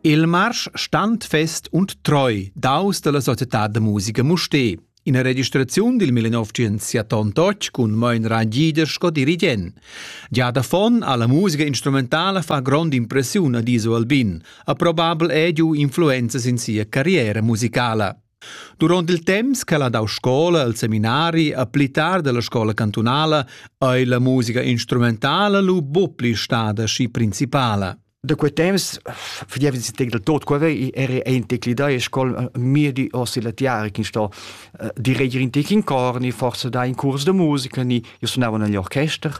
Il marsch standfest und treu daus dalla societad da musica Mustér. Ina registraziun dil 1978 cun Moin Rangider sco dirigent. Gia da fon alla musica instrumentala fa grond impressiun ad Iso Albin, ha probabel è giu influenzas in sia carriera musicala. Duront il temps ch'el ha dau scola al seminari a pli tard dalla scola cantunala ei la musica instrumentala lu buc pli stada schi principala. Da quei temps fadevi si tec del tot quava era ein tec li da scol mir di ossi la tiara che sto di reger in tec in cor ni forse da in curs de musica ni io suonavo negli orchester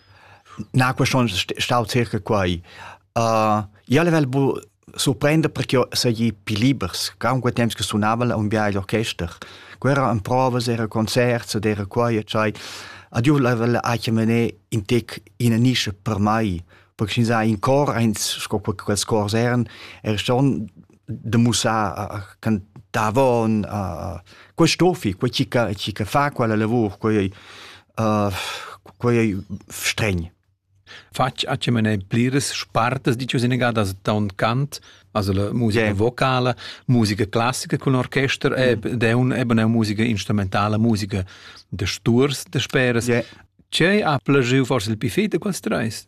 Na question stau circa quai. Uh, io level bu surprender per che sei più libers, che aunque temps che sunava un biai l'orchester. Quera en provas, era concerts, era quai, cioè. Ad io level ha che mené in tec in nische per mai, perché sin sai in cor, eins sco quels cors eran, er schon de mussar can davon uh, quei stofi quei chi ca chi ca fa quella lavur quei uh, quei stregn Fatg a ce mene pliras spartas di ciò senegadas da un cant, also la musica yeah. vocala, musica classica con orchester e mm. de un eben musica instrumentala, musica de sturs de speras. Yeah. Ce ha plagiu forse il pifete quels treis?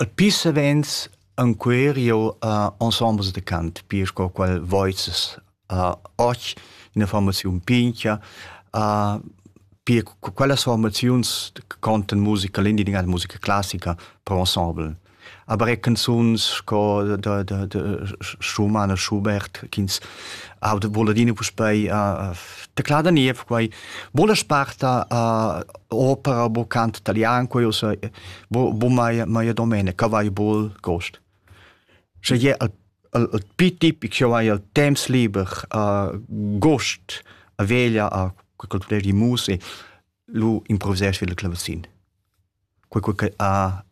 Alpi savens encuer jeu ha ensembles da cant pia sco quel voices ha och ina formaziun pintga ha pia co quellas formaziuns contan musica l'engiadin'Aula musica classica per ensemble. Aber er canzuns sco da da da Schumann e Schubert ch'ins ha da vul adina puspei teclar da niev quei. Buca sparta ha opera bo cant italian quei ussa bo bo mai mai domenica vai bol gost sche je al al piti pik jo vai al temps liber a gost a veglia a cultura di musica lu improvvisar il clavacin quei quei a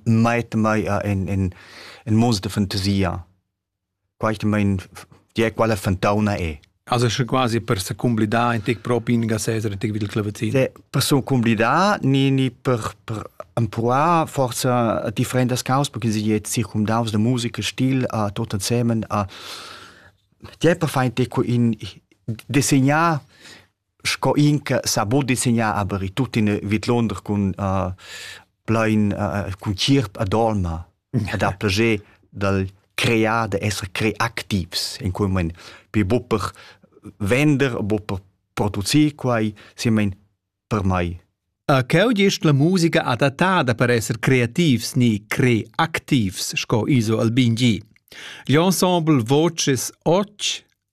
mai mai in in in mondo de fantasia Quaitamaing die quella fantauna è. Also sche quasi per se cumblidar in tic propi in gasesera tic vid il clavazin. Se per so cumblidar ni ni per per empruar forza differentas cause perché sie jetzt sich um daus de musica stil a tot insemen a die per fein tic in disegnar sco in che sa bod disegnar aber i tuttina vidlonder cun uh, plein uh, cun chirp a dolma ed ha plager dal crear da essere creativs in quel moment per buper vender buper producir quai simmen per mai Cheu gest la musica adattada per esser creativs ni creactivs, sco Iso Albin G. L'ensemble Voces Och